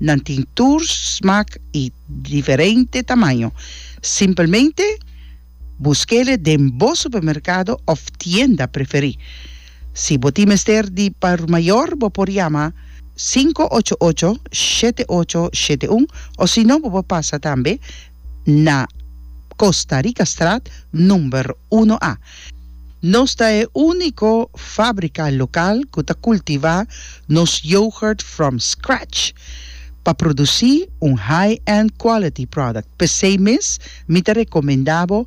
Nan tin tur smak i diferente tamaño. Simpelmente busk'e den bo supermerkado òf tienda preferí. Si bo tin mester di por mayor bo por yama sinku ocho ocho, shete ocho, shete un òsino bo por pasa tambe na Costa Ricastraat number uno a. Nos ta e unico fabrica local cu ta cultiva nos yoghurt from scratch pa produci un high-end quality product. Pesey mes mi ta recomenda bo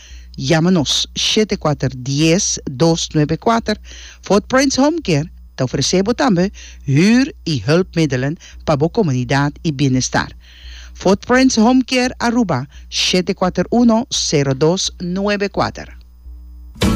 Yama nos, shete kuater dies dos nuebe kuater. Fort Prince Home Care ta ofresé bo tambe huur i hulpmiddelen pa bo komunidat i bienestar. Fort Prince Home Care Aruba, shete kuater uno sero dos nuebe kuater.